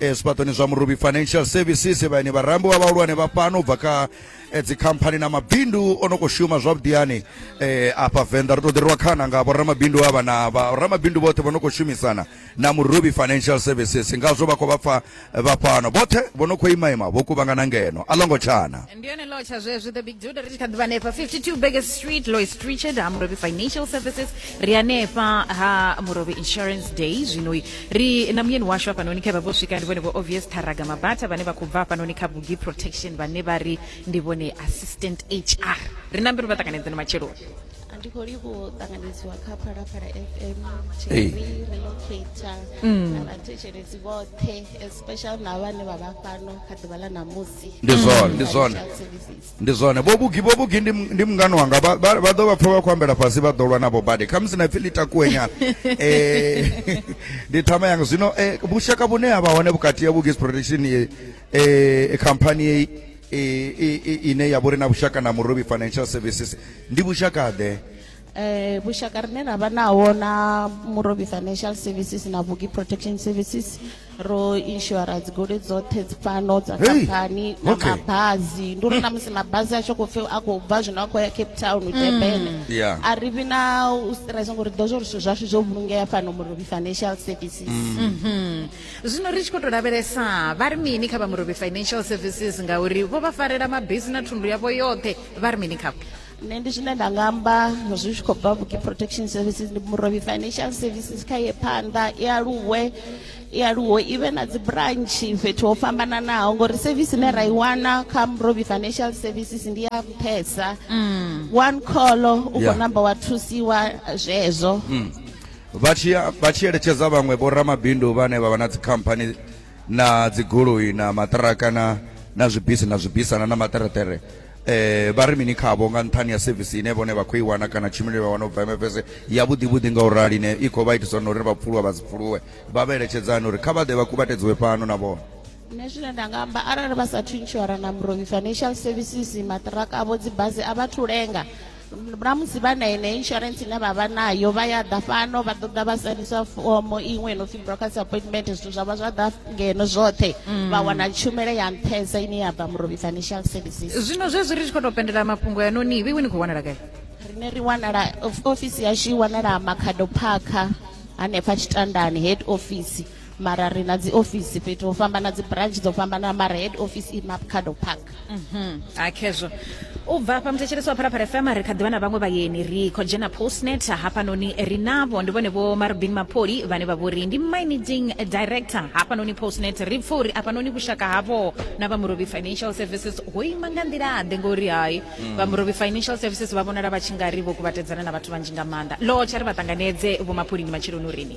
eh, zwifhaṱoni zwa murubi financial services vhaeni vharambi wa vhahulwane vha fhano u bva kha eh, dzikhamphani na mabindu o no khou shuma zwavhuḓiyani eh, afha venḓa ri tou ḓiriwa khana nga vhoramabindu avha na vhoramabindu vhoṱhe vho no khou shumisana na murubi financial services ngazwo vha khou vha pfa vha fhano vhoṱhe vho no khou imaima vho kuvhangana ngeno a longo tshana ndi yone law tsha zwezwi the big dude ri tshi kha ḓivha hanefha 52 Baker street lois richard ha murobi financial services ri hanefha ha murobi insurance day zwinoi ri na muyeni washu hafhanoni khe vha vho swika ndi vhone vho obvious tharaga mabata vhane vha khou bva hafhanoni kha bugi protection vhane vha ri ndi vhone assistant hr ri na mbiru vha ṱanganedze na matsheloni ndi khou livhuwa u ṱanganedziwa kha phalaphala fm Hey. tv relocator na vhathetshelesi vhoṱhe especially na vhane vha vha fhano kha ḓuvha ḽa ṋamusi ndi zwone ndi zwone ndi zwone vho vhugi vho vhugi ndi ndi mungani wanga vha vha- vha ḓo vha pfha vha khou ambela fhasi vha ḓo lwa navho badi khamusi na pfi ḽi takuwe nyana Eh, ndi thama yanga zwino eh, vhushaka vhune ha vha hone vhukati ya vhugis protection eh, eh, khamphani yeyi eh, i- i- ine ya vhori na vhushaka na murobi financial services ndi vhushaka ḓe Eh, vhushaka rine ra vha naho na murobi financial services na vhugi protection services ro inshora dzigoloi dzoṱhe dzi fhano dza Hey, khamphani na okay. mabhazi ndi uri na musi mabhazi a tshi khou pfi a khou bva zwino a khou ya cape town u tebene Yeah. a ri vhi na u stress ngori ri ḓo zwo uri zwithu zwashu zwo vhulungea fhano murobi financial services Mhm. zwino ri tshi khou tou lavhelesa vha ri mini kha vha murobi financial services ngauri vho vha farela mabisi na thundu yavho yoṱhe vha ri mini khavho nṋe ndi zwine nda nga amba zwi tshi khou bva vhuki protection services ndi murovhi financial services kha ye phanḓa i aluwe i aluwe i vhe na dzi branch fhethu ho fhambananaho ngori service ine ra i wana kha murovhi financial services ndi ya nṱhesa mm. one call u khou yeah. namba wa thusiwa zwezwo mm. vha tshi eletshedza vhaṅwe vho ramabindu vhane vha vha na dzikhamphani na dzigoloi na maṱiraka na na zwibisi na zwibisana na maṱereṱere Eh, vha ri mini khavho nga nṱhani ha sevisi ine vhone vha khou i wana kana tshumelo ine vha wana u bva MFS ya vhuḓi-vhuḓi nga u rali ine i khou vha itisa uri na uri vha pfuluwa vha si pfuluwe vha vha eletshedzani uri kha vha ḓe vha kuvhatedziwe fhano na vhone nṋe zwine nda nga amba arali vha sathu inshora na muroi financial services maṱiraka avho dzibasi a vhathu lenga na musi vha na ine insurance ine vha vha nayo vha ya ḓa fano vha ṱoḓa vha sainisa fomo iṅwe no pfhi brokers appointment zwithu zwa vha zwa ḓa ngeno zwoṱhe mm. vha wana tshumelo ya nṱhesa ine ya bva murobi financial services zwino zwezwi ri tshi khou tou pendela mafhungo ya noni iwe ni khou wanala gai rine ri wanala ofisi yashu i wanala makhado phakha hanefha tshitandani head office mara ri na dzi office fhethu ho fhambana dzi branch dzo fhambana mara head office i mapcado park mhm. a khezwo u bva hafha muthetshelesi wa phalaphala fm ri kha ḓivha na vhaṅwe vhayeni ri khou dzhena postnet hafhanoni ri navho ndi vhone vho marubin mapoli vhane vha vhori ndi managing director hafhanoni postnet ri pfa uri afhanoni vhushaka havho na vha murobi financial services ho ima nga nḓilaḓe ngori hai mm. vha murobi financial services vha vhonala vha tshi nga ri vho kuvhatedzana na vhathu vhanzhi nga maanḓa lotsha ri vha ṱanganedze vho mapholi ndi matsheloni urini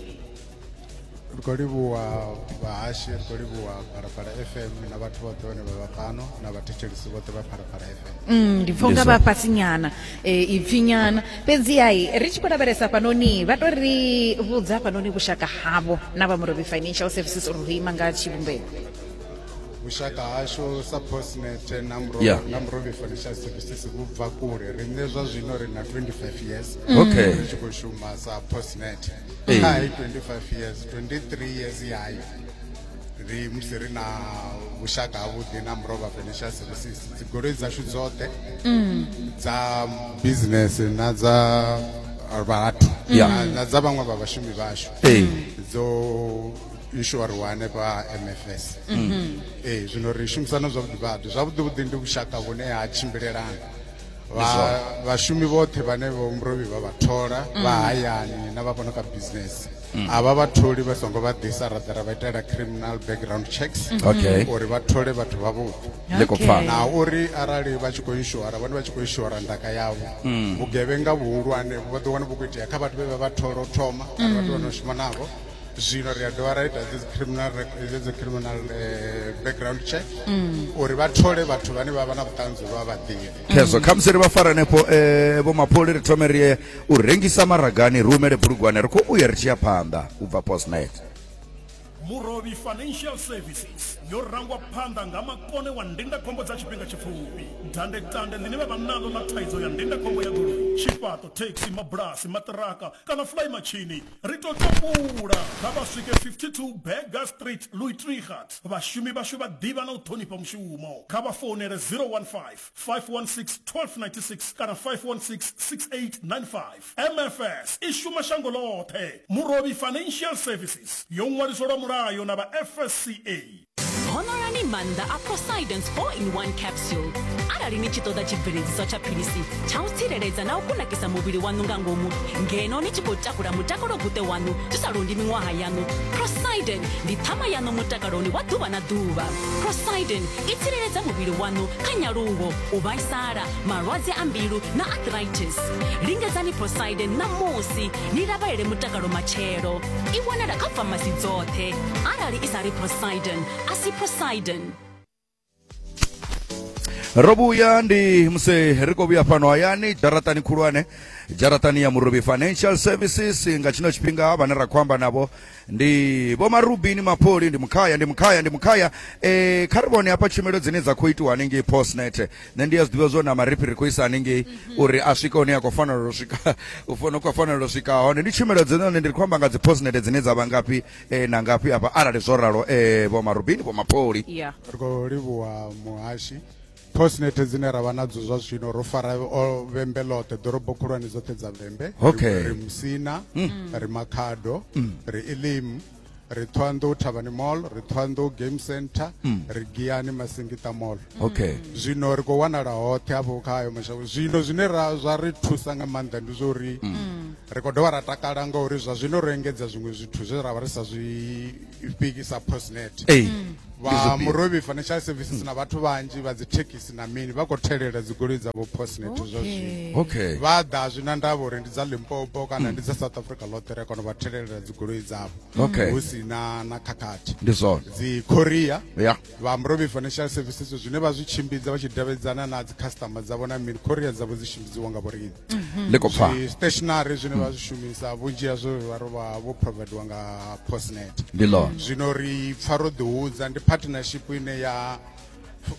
ri khou livhuwa vhahashi ri khou livhuwa phalaphala fm na vhathu vhoṱhe vhane vha vha fhano na vhathetshelisi vhoṱhe vha phalaphala fm Mm, ndi pfa unga vha fhasi nyana eh, ipfi nyana fhedzi hai ri tshi khou lavhelesa fhanoni vha to ri vhudza fhanoni vhushaka havho na vha murobi financial services uri ho ima nga tshivhumbeo vhushaka hashu sa postnet na Muro- Yeah. na murobi financial services vhu bva kule riṋe zwa zwino ri na 25 years Okay. ri tshi khou shuma sa postnet Ee. kha i 25 years 23 years ya hayo ri musi ri na vhushaka havhuḓi na murova financial services dzigoloi dzashu dzoṱhe dza business na dza vhathu Ya. na- na dza vhaṅwe vha vhashumi vhashu Ee. dzo inshoriwa hanefha mfs ee zwino ri shumisana zwavhuḓi vhaḓi zwavhuḓi vhuḓi ndi vhushaka vhune ha tshimbilelana vhashumi vhoṱhe vhane vho mrovi vha vha thola mm. vha hayani na vha vhono ka business mm. a vha vha tholi vha songo vha ḓisa ra ḓara vha itela criminal background checks mm-hmm. uri vha thole vhathu vhavhuḓi na uri arali vha tshi khou inshora vhone vha tshi khou inshora ndaka yavho mm. vhugevhenga vhuhulwane vha ḓo wana vhu khou itea kha vhathu vhe vha vha thola u thoma kana vhathu vha no shuma navho zwino ri a dovha ra ita dzi criminal dzi criminal eh, background check mm. uri vha thole vhathu vhane vha vha na vhuṱanzi vha vhaḓivhi khezwo khamusi ri vha fara hanefho um eh, vho mapholi ri thome ri ye u rengisa maragani ri humele bulugwane ri khou uya ri tshi ya phanḓa u bva postnet murovhi financial services yo rangwa phanḓa nga makone wa ndindakhombo dza tshifhinga tshipfufhi dandetande ḽine vha vha naḽo ḽa thaidzo ya ndindakhombo ya goloi tshifhaṱo thekhisi mabulasi maṱiraka kana fly matshini Ri tou tambula kha vha swike 52 Burger Street, Luitregat. Vhashumi vhashu vha ḓivha na u ṱhonifha mushumo. Kha vha founele 015 516 1296 kana 516 6895. MFS i shuma shango ḽoṱhe. Murovhi Financial Services yo ṅwaliswa lwa mulayo na vha FSCA. ṅwalani maanḓa a poseidon 4 in 1 capsule arali ni tshi ṱoḓa tshibveledziswa tsha philisi tsha u tsireledza na u kunakisa muvhili waṋu nga ngomu ngeno ni tshi khou takula mutakalo guṱe waṋu zwi sa londi miṅwaha yaṋu poseidon ndi ṱhama yaṋu mutakaloni wa ḓuvha na ḓuvha poseidon i tsireledza muvhili waṋu kha nyaluwo u vhaisala malwadze a mbilu na arthritis lingedzani poseidon ṋamusi ni lavhelele mutakalo matshelo i wanala kha famasi dzoṱhe arali i sa ri poseidon a si poseidon ro vhuya ndi musi ri khou vhuya fhano hayani dzharaṱani khulwane dzharaṱani ya murobi financial services nga tshino tshifhinga vhane ra khou amba navho ndi vho marubini mapoli ndi mukhaya ndi mukhaya ndi mukhaya um kha ri vhone hafha tshumelo dzine dza khou itiwa hanengei postnet nṋe ndi a zwi ḓivha zwo na marifhi ri khou isa hanengei mhm. uri a swike hune a khou fanela u swika u fana khou fanela u swika hone ndi tshumelo dzine hone ndi khou amba nga dzi postnete dzine dza vha ngafhi eh, na ngafhi hafha arali zwo ralo eh, vho marubini vho mapholi ri khou livhuwa muhashi postnete dzine ra vha nadzo zwa zwino ro fara vhembe ḽoṱhe ḓorobo khulwane dzoṱhe dza vhembe ri musina mm. ri makhado mm. ri elimu ri thohoyanḓou thavhani mall ri thohoyanḓou game center mm. ri giyani masingita mall okay mm. zwino ri khou wanala hoṱhe hafho kha ayo mashango zwino zwine ra zwa ri thusa nga maanḓa ndi zwa uri mm. ri khou dovha ra takala ngauri zwa zwino ro engedza zwiṅwe zwithu zwe ra vha ri sa zwi fhikisa postnet vha murovhi financial services na vhathu vhanzhi vha dzi thekhisi na mini vha khou thelela dzigoloi dzavho postnet zwa zwino okay vha ḓa zwi na ndavha uri ndi dza limpopo kana ndi dza south africa ḽoṱhe ri kono vha thelela dzigoloi dzavho Okay. hu si na na khakhathi ndi zwone dzi korea ya vha murovhi financial services zwine vha zwi tshimbidza vha tshi davhidzana na dzi customer dzavho na mini korea dzavho dzi tshimbidziwa nga vhoriṋe ḽi khou pfa stationary zwine vha zwi shumisa vhunzhi ha zwo vha rovha vho provadiwa nga postnet ndi ḽone zwino ri pfa ro ḓihudza ndi partnership ine ya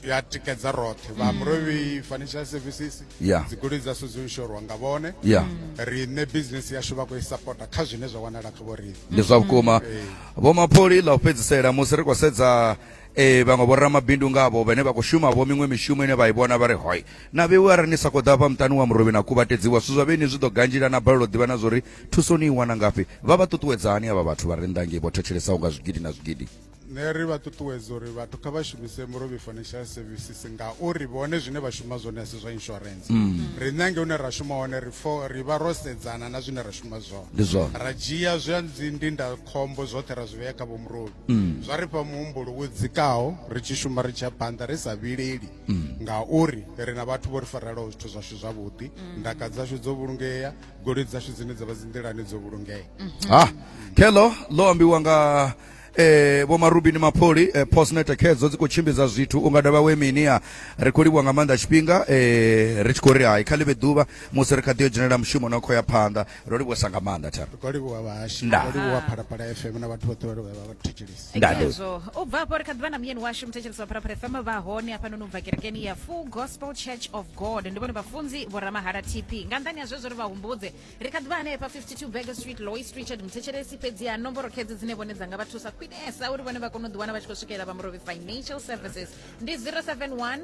ya tikedza roṱhe vha murovhi financial services Yeah. dzigoloi dza so dzo inshorwa nga vhone ya riṋe business yashu vha khou i sapota kha zwine zwa wanala kha vho riṋe ndi zwa vhukuma vho mapholi ḽa u fhedzisela musi ri khou sedza eh, vhaṅwe vhoramabindu ngavho vhane vha khou shuma vho miṅwe mishumo ine vha i vhona vha ri hoi Na vheiwe arali ni sa khou ḓa hafha muṱani wa murovhi na kuvhatedziwa, zwithu zwa vheiinwi zwi ḓo ganzhila na balelwa u ḓivha na zwa uri thuso ni i wana ngafhi. Vha vha ṱuṱuwedza hani avha vhathu vha re nnḓa hangei vho thetshelesaho nga zwigidi na zwigidi? Nṋe ri vha ṱuṱuwedza uri vhathu kha vha shumise Murovhi Financial Services ngauri vhone zwine vha shuma zwone a si zwa insurance. Riṋe hangei hune ra shuma hone ri fo ri vha ro sedzana na zwine ra shuma zwone. Ndi zwone. Ra dzhia zwa dzi ndindakhombo zwoṱhe ra zwi vhea kha vho Murovhi. Zwa ri fha muhumbulo wo dzikaho ri tshi shuma ri tshi ya phanḓa ri sa vhileli. mm. ngauri ri na vhathu vho ri farelaho zwithu zwashu zwavhuḓi mm. ndaka dzashu dzo vhulungea goloi dzashu dzine dza vha dzinḓilani dzo vhulungea mm-hmm. ha ah, khelo ḽo ambiwa nga eh vho marubini mapholi eh, postnet khedzo dzi khou tshimbidza zwithu unga dovha we minia ri khou livhuwa nga maanḓa tshifhinga eh ri tshi khou ri hai kha ḽivhe ḓuvha musi ri kha ḓi yo dzhenela mushumo na khou ya phanḓa ro livhuwa sa nga maanḓa thero ri khou livhuwa vhahashu Nda. ro livhuwa phalaphala fm na vhathu vhoṱhe vha livhuwa vha vha thetshelisi Nda, ndi- Ngazwo, u bva afho ri kha ḓivha na muyeni washu muthetshelesi wa phalaphala fm vha hone hafhanoni u bva kerekeni ya full gospel church of god ndi vhone vhafunzi vho ramahala tp nga nḓani ha zwezwo ri vha humbudze ri kha ḓivha hanefha 52 burger street lois richard muthetshelesi fhedzi ha nomboro khedzi dzine vhone dza nga vha thusa khwinesa uri vhone vha kone u ḓiwana vha tshi khou swikelela vha murovhi financial services ndi 071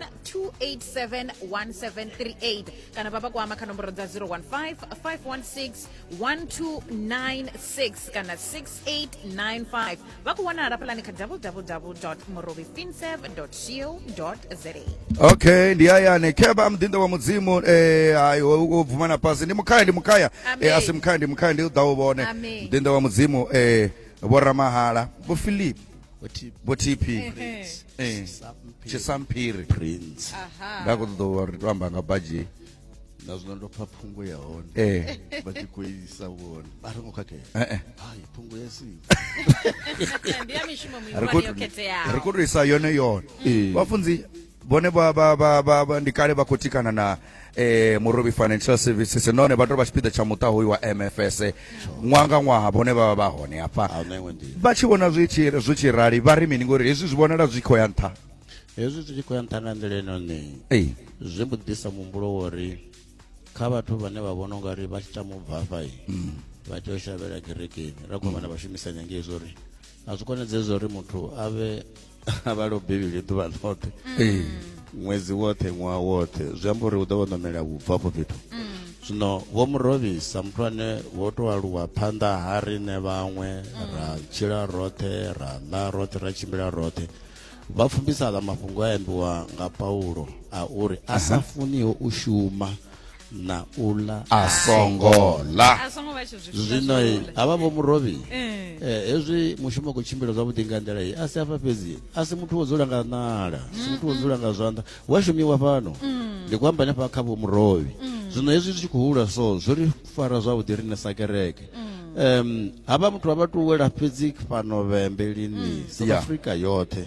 287 1738 kana vha vha kwama kha nomboro dza 015 516 1296 kana 6895 vha ku wanala pulani kha www morobi finsev co za okay ndi ayani kheba mdinda wa mudzimu eh hayi wo bvuma na pasi ndi mukhaya ndi mukhaya Amen. eh asi mukhaya ndi mukhaya ndi u ḓa u vhone Amen. mdinda wa mudzimu eh vho ramahala vho philip vho tp eh, eh. tshisamphiri prince nda khou ṱoḓa uri to amba nga baji na zwino ndo pfa phungo ya hone eh. vha tshi khou isa vhone a ri ngo khakhea hai phungo ya siri khou to isa yone yone vhafunzi vhone vha vha vha vha vha- ndi kale vha khou tikana na eh, murobi financial services nahone vha tou vha tshipiḓa tsha muṱa hoyu wa mfs ṅwaha nga ṅwaha vhone vha vha vha hone hafha a na iṅwe nḓila vha tshi vhona zwi tshi zwi tshi rali vha ri mini ngori hezwi zwi vhonala zwi khou ya nṱha hezwi zwi tshi khou ya nṱha nga nḓila inoni Ei. zwi mbo ḓisa muhumbulo wa uri kha vhathu vhane vha vhona unga ri vha tshi tama u bva afha i vha tea u shavhela kerekeni ra khou vhana vhashumisanya ngei zwo ri a zwi konadzei zwo ri muthu a vhe a vhalo bivhili ḓuvha ḽoṱhe ee ṅwedzi woṱhe ṅwaha woṱhe zwi amba uri u ḓo vha ṋamela vhubva afho fhethu zwino vho mu rovhisa muthu ane vho to aluwa phanḓa ha riṋe vhaṅwe ra tshila roṱhe ra ḽa roṱhe ra tshimbila roṱhe vha pfumbisa aḽa mafhungo a ambiwa nga paulo a uri a sa funiho u shuma na ula a songo ḽa a songo vha tsho zwi funa zwino zwi ula. havha vho murobi Eh. eh, hezwi mushumo u khou tshimbila zwavhuḓi nga nḓila iyi a si afha fhedzi a si muthu wo dzula nga ṋala si muthu wo dzula nga zwanḓa hu a shumiwa fhano ndi khou amba hanefha kha vho murobi zwino hezwi zwi tshi khou hula so zwo ri fara zwavhuḓi riṋe sa kereke um havha muthu vha vha tou wela fhedzi fhano vhembe lini south Yeah. africa yoṱhe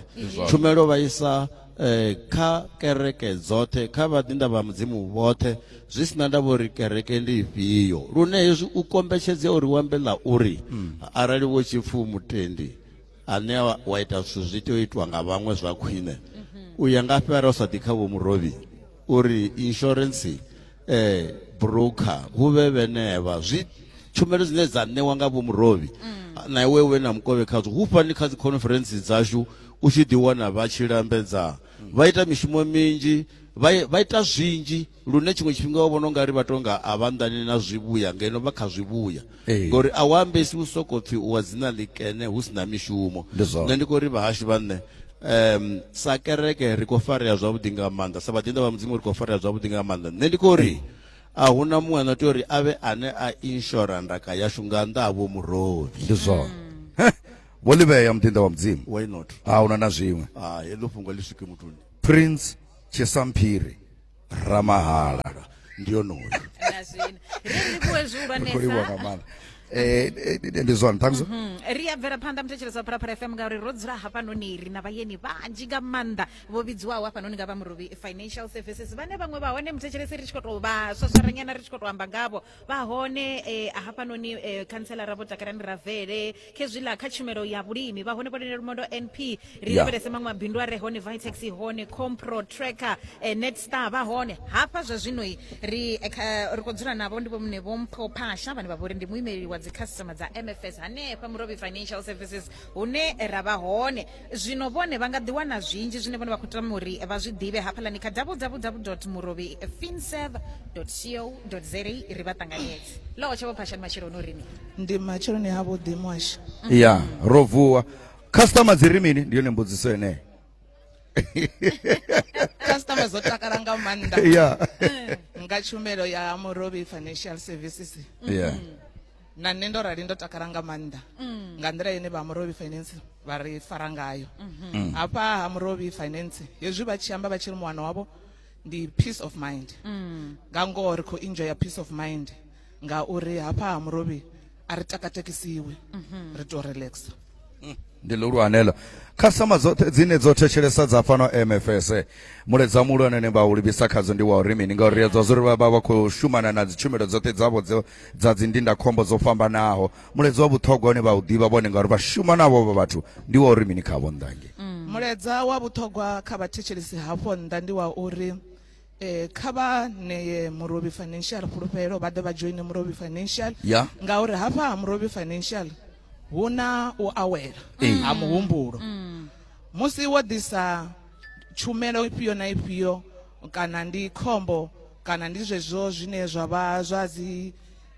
tshumelo vha isa eh, kha kereke dzoṱhe kha vhaḓinḓa vha mudzimu vhoṱhe zwi sina ndavha uri kereke ndi ifhio lune hezwi u kombetshedzea uri wambe ḽa uri mm. arali wo tshipfu mutendi ane wa ita zwithu zwi tea u itwa nga vhaṅwe zwa khwine mm-hmm. u ya ngafhi arali u sa ḓi kha vho murovhi uri insurance eh broker hu vhe vhenevha zwi tshumelo dzine dza ṋewa nga vho murovhi mm. na iwe we na mukovhe khadzo hu fani kha dzi conference dzashu u tshi ḓi wana vha tshi lambedza mm. vha ita mishumo minzhi vha ita zwinzhi lune tshiṅwe tshifhinga wa vhona ungari vha tonga a vha nḓani na zwivhuya ngeno vha kha zwivhuya Ee. ngori a u ambesi u soko pfi u wa dzina ḽikene hu si na mishumo Ndi zwone. nṋe ndi khou ri vhahashu vha nṋe em sa kereke ri khou farea zwavhuḓi nga maanḓa sa vhaḓinḓa vha mudzimu ri khou farea zwavhuḓi nga maanḓa nṋe ndi khou ri a hu na muṅwe ano tea uri a vhe ane a inshora ndaka yashu nga nnḓa ha vho murovi ndi zwone Heh, vho livhea muḓinḓa wa mudzimu why not a huna na zwiṅwe ha heḽo fhungo ḽi swike muthuni prince tshisamphiri ramahala ndi onoyo na zwino ri livhuwe zwihulwanesa kholiwa nga maanḓa Eh, eh, ndi zwone thanks sir. Mm, ri a bvela phanḓa muthetshelesi wa phalaphala fm ngauri ro dzula hafhanoni ri na vhayeni vhanzhi nga maanḓa vho vhidziwaho hafhanoni nga vha murovi financial services vhane vhaṅwe vha hone muthetshelesi ri tshi khou tou vha swaswaranyana ri tshi khou tou amba ngavho vha hone eh, hafhanoni eh, khantsela ra vho takalani ravele khezwiḽa kha tshumelo ya vhulimi vha hone vhonene lumondo np ri Ya. lavhelese maṅwe mabindu a re hone vitex i hone compro tracker eh, netstar vha hone hafha zwa zwinoi ri eh, kha- ri khou dzula navho ndi vhomune vho mpho phasha vhane vha vhori ndi muimeleli wa dzikhasitama dza mfs hanefha murobi financial services hune ra vha hone zwino vhone vha nga ḓiwana zwinzhi zwine vhone vha khou tama uri vha zwi ḓivhe hafhaḽani kha www murovhi finserv co za ri vha ṱanganyedze loho tshe vho phashani matsheloni uri ni ndi matsheloni ha vhuḓi mwasha ya ro vuwa customer dzi ri mini ndi yone mbudziso yeneyo customer dzo takala nga maanḓa ya nga tshumelo ya murovhi financial services ya na nṋe ndo rali ndo takala nga maanḓa mm. nga nḓila ine vha murovhi finance vha ri fara ngayo mm-hmm. mm. hafha ha murovhi finance hezwi vha tshi amba vha tshi ri muwana wavho ndi peace of mind mm. nga ngoho ri khou enjoya peace of mind ngauri hafha ha murovhi a ri takatekisiwi mm-hmm. ri tou relaxa ndi ḽihulwane ḽo khasitama dzoṱhe dzine dzo thetshelesa dza fhano mfs muledza muhulwane ne vha u livhisa khadzo ndi wa uri mini ngauri ri a dza zwa uri vha vha vha khou shumana na dzitshumelo dzoṱhe dzavho dzo dza dzindindakhombo dzo fhambanaho muledza wa vhuṱhogwa une vha u ḓivha vhone ngauri vha shuma navho vha vhathu ndi wa uri mini khavho nnḓange muledza wa vhuṱhogwa kha vhathetshelesi hafho nnḓa ndi wa uri Eh, kha vha ṋeye murovhi financial fhulufhelo vha ḓe vha joine murovhi financial Ya. ngauri hafha ha murovhi financial hu na u awela Ee. ha muhumbulo musi wo ḓisa tshumelo ifhio na ifhio kana ndi khombo kana ndi zwezwo zwine zwa vha zwa dzi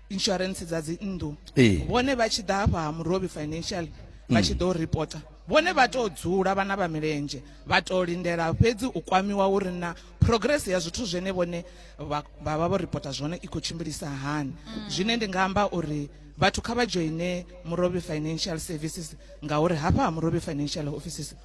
insurance dza dzi nnḓu ee vhone vha tshi ḓa hafha ha murobi financial vha tshi ḓo reporta vhone vha tou dzula vhana vha milenzhe vha tou lindela fhedzi u kwamiwa uri na progress ya zwithu zwine vhone vha vha vha vho reporta zwone i khou tshimbilisa hani zwine ndi nga amba uri vhathu kha vha joine murobi financial services ngauri hafha ha murobi financial offices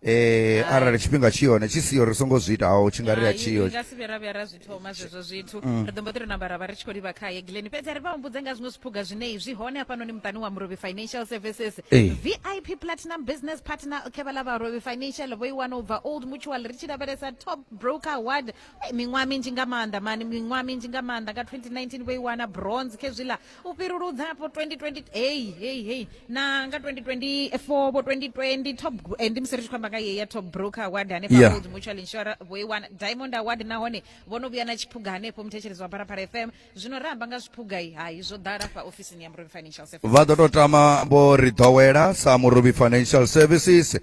eh arali tshifhinga tshi hone tshi siho ri songo zwi itaho tshi nga ri a Hai, tshiyo ri nga si vhe ra vhuya ra zwi thoma zwezwo zwithu ri ḓo mbo ḓi ri namba ra vha ri tshi khou livha khaye glen fhedzi a ri vha humbudze nga zwiṅwe zwiphuga zwine zwi hone hafhanoni muṱani wa murovhi financial services Ee. vip platinum business partner khevha ḽa vharovhi financial vho i wana u bva old mutual ri tshi lavhelesa top broker award Ei, miṅwaha minzhi nga maanḓa mani miṅwaha minzhi nga maanḓa nga 2019 vho i wana bronze khezwiḽa u fhiruludza po 2020 hey hey hey na nga 2024 po 2020 top eh, ndi musi ri tshi khou amba nga yeya top broker award hanefha Yeah. yeah. mutual insurance vho i wana diamond award nahone vho no vhuya na tshiphuga hanefho muthetshelezi wa pharapara fm zwino ra amba nga zwiphuga i hai zwo ḓala fha ofisini ya murimi financial service vha ḓo tou tama vho ri ḓowela sa murubi financial services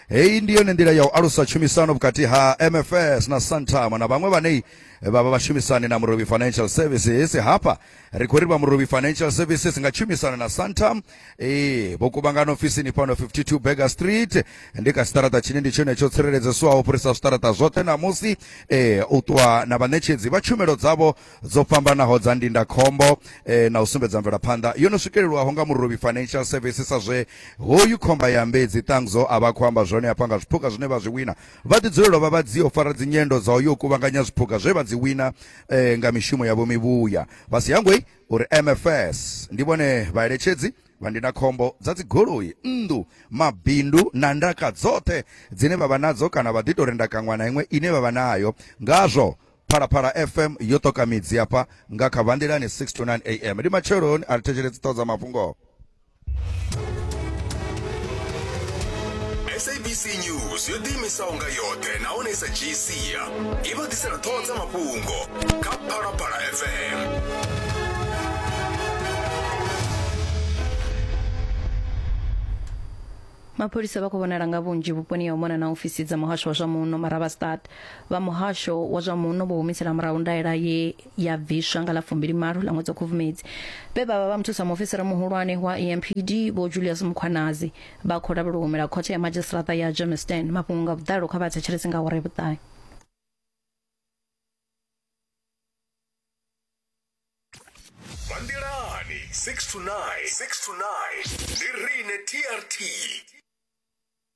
heyi ndi yone nḓila ya u alusa tshumisano vhukati ha mfs na santama na vhaṅwe vhane vha vha vhashumisani na murubi financial services hafha ri khou ri vha muruvhi financial services nga tshumisano na santam ee vho kuvhangana ofisini fhano 52 burger street ndi kha siṱaraṱa tshine ndi tshone tsho tsireledzeswaho fhirisa zwiṱaraṱa zwoṱhe ṋamusi ee u ṱuwa na vhaṋetshedzi vha tshumelo dzavho dzo fhambanaho dza ndindakhombo ee na u sumbedza mvelaphanḓa yo no swikelelwaho nga muruvhi financial services sa zwe hoyu khomba ya mbedzi ṱangzo a vha khou amba zwone hafha nga zwiphuga zwine vha zwi wina vha ḓi dzulelwa vha vha dzio fara dzinyendo dza u yo kuvhanganya zwiphuga zwe vha dzi wina e, nga mishumo yavho mivhuya vha si hangwei uri mfs ndi vhone vhaeletshedzi vha ndindakhombo dza dzigoloi nnḓu mabindu na ndaka dzoṱhe dzine vha vha nadzo kana vha ḓi tou renda kaṅwa na iṅwe ine vha vha nayo ngazwo phalaphala fm yo ṱoka midzi hafha nga kha vanḓilani 6 to 9 am ndi matsheloni a ri thetshelesi ṱhoho dza mafhungo sabc news yo ḓiimisaho nga yoṱhe nahone i sa dzhii sia i vha ḓisela ṱhoho dza mafhungo kha phalaphala fm mapholisa vha khou vhonala nga vhunzhi vhuponi ya u mona na ofisi dza muhasho wa zwa muno maravastad vha muhasho wa zwa muno vho humisela murahu ndaela ye ya bviswa nga ḽa fumbilimalo ḽa ṅwedzi wa khubvumedzi vhe vha vha vha muthusa muofisiri muhulwane wa empd vho julius mukhwanazi vha khou lavhelwa u humela khothe ya madzhisiṱiraṱa ya germiston mafhungo nga vhuḓalo kha vha thetshelesi nga hore vhuṱahe vha nḓilani 6 to 9 6 to 9 ndi rine trt